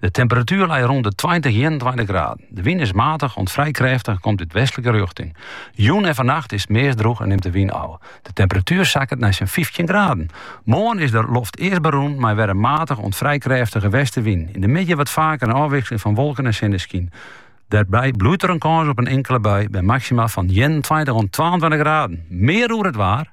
De temperatuer leit rûn de tweintich, ienentweintich graden. De wyn is matig oant frij krêftich en komt út westlike rjochting. Jûn en fannacht is it meast drûch en nimt de wyn ôf. De temperatuer sakket nei sa'n fyftjin graden. Moarn is de loft earst berûn mei wer de matige oant frij krêftige westewyn. Yn de middei wat faker in ôfwikseling fan wolken en sinneskyn. Dêrby bliuwt der in kâns op in inkele bui by maksima fan ienentweintich oant twaentweintich graden. Mear oer it waar.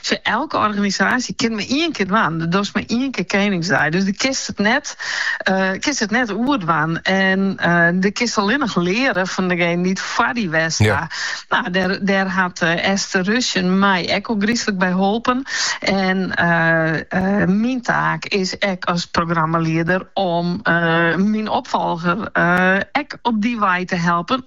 Sa'n organisaasje kin mar ien kear dwaan. Do dochst mar ien kear Keningsdei. Dus do kinst it net, kinst it net oerdwaan. En do kinst allinnich leare fan dejingen dy't it foar dy dien ha. Nou, dêr, dêr hat Esther Rushen my ek ôfgryslik by holpen. En myn taak is ek as programmalieder om myn opfolger ek op dy wei te helpen.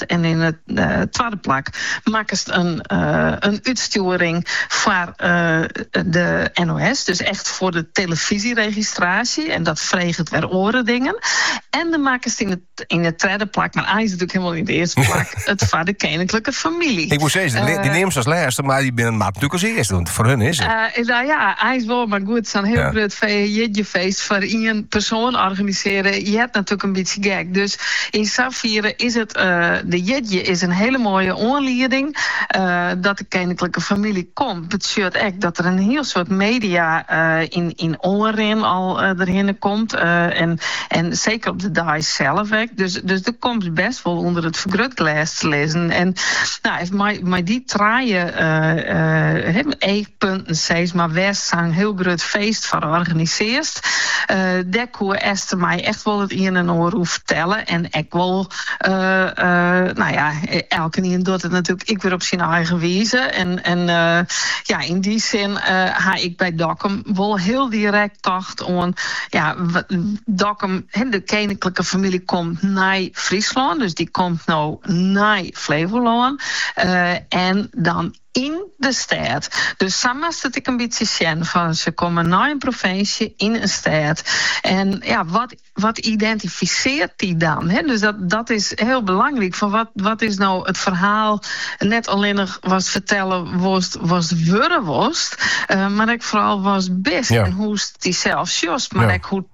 West en yn it twadde plak makkest in útstjoering foar de NOS, dus echt foar de telefyzjeregistraasje en dat freget wer oare dingen. En dan makkest yn it yn it tredde plak, mar it is natuerlik hielendal yn it earste plak, it foar de keninklike famylje. Ik woe sizze, dy, dy neamst as lêste, mar dy binne mar natuerlik as earste, want foar hun is it. Uh, no ja, it is wol, mar goed, sa'n hiel ja. grut feest foar ien persoan organisearje, it is natuerlik in bytsje gek. Dus Yn safiere is it de jierdei is in hiele moaie oanlieding dat de keninklike famylje komt. Mar sjochst ek dat der in hiel soad media yn oanrin al derhinne komt en seker op de dei sels ek. Dus do komst bêst wol ûnder it fergrutglês te lizzen. En mei dy trije punten seis, mar wêrst sa'n hiel grut feest foar organisearst, dêr koe Esther my echt wol it ien en oar oer fertelle en ek wol, no ja, elkenien docht it natuerlik ek wer op syn eigen wize en ja, yn dy sin ha ik by Dokkum wol hiel direkt tocht oan, ja, Dokkum, de keninklike famylje komt nei Fryslân, dus dy komt no nei Flevolân en dan, Yn de stêd. Dus sa moatst it ek in bytsje sjen fan se komme nei in provinsje yn in stêd. En ja, wat wat identifiseart dy dan? Hè, dus dat dat is hiel belangryk fan wat wat is no it ferhaal, net allinnich watst fertelle wolst, watst wurde wolst, mar ek foaral watst bist en hoechst dysels sjochst, mar ek hoe.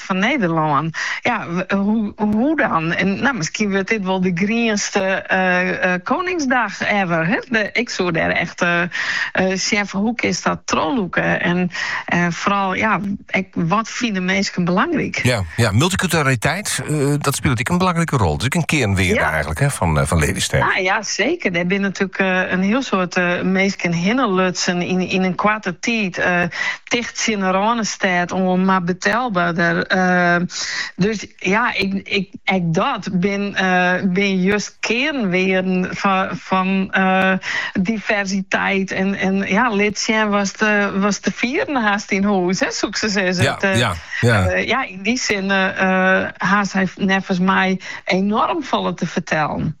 Hart fan Nederlân. Ja, hoe dan? Nou, miskien wurdt dit wol de grienste Koningsdag ever. Ik soe dêr echt sjen fan hoe kinst dat trochlûke? En foaral ja, ek wat fine minsken belangryk? Ja, ja multiculturaliteit, dat spilet ek in belangrike rol. Dat is ek in kearnwearde ja. eigentlik hè, fan, fan Lelystêd. Ah, ja, seker. Der binne natuerlik in hiel soad minsken hinnelutsen yn, yn in koarte tiid. ticht tsjin 'e Rânestêd oan, mar betelberder. Dus ja, ek dat binne just kearnwearden fan diversiteit en ja, lit sjen watst, watst te fieren hast yn hûs, soe ik sa sizze. Ja, yn dy sin ha sy neffens my enorm folle te fertellen.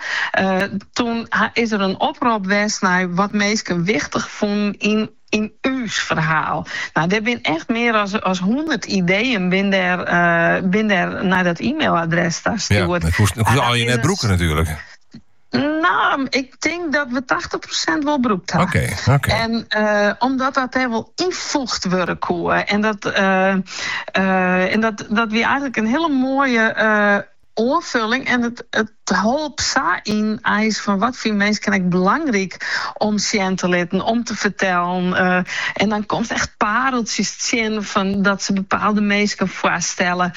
Toen is er in oprop west nei wat minsken wichtich fûnen yn ús ferhaal. Nou, der binne echt mear as hûndert ideeën binne der nei dat e-mailadres tastjoerd. Ja, dat koene jo net brûke natuerlik. No, ik tink dat we tachtich prosint wol brûkt ha. Oké, oké. En omdat dat derwol ynfoege wurde koe. En dat wie eigenlijk in hele moaie oanfulling en it holp sa ynienen fan wat fine minsken ek belangryk om sjen te litten, om te fertellen. En dan komst echt pareltsjes tsjin fan dat se bepaalde minsken foarstelle.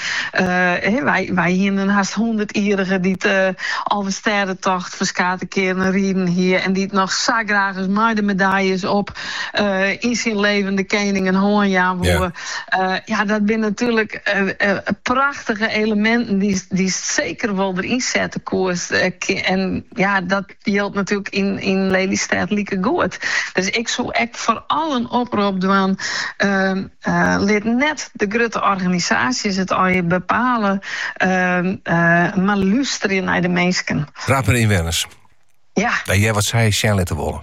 Wy hiene in hast hûndertjierrige dy't de Alvestêdetocht ferskate kearen riden hie en dy't noch sa graach ris mei de medaljes op yn syn leven de kening in hân jaan woe. Ja, dat binne natuerlik prachtige eleminten dy'tst seker wol deryn sette koest. En ja, dat jildt natuerlik yn Lelystêd likegoed. Dus ik soe ek foaral in oprop dwaan, lit net de grutte organisaasjes it allegear bepale, mar lústerje nei de minsken. Tapje de ynwenners, hear wat sy sjen litte wolle.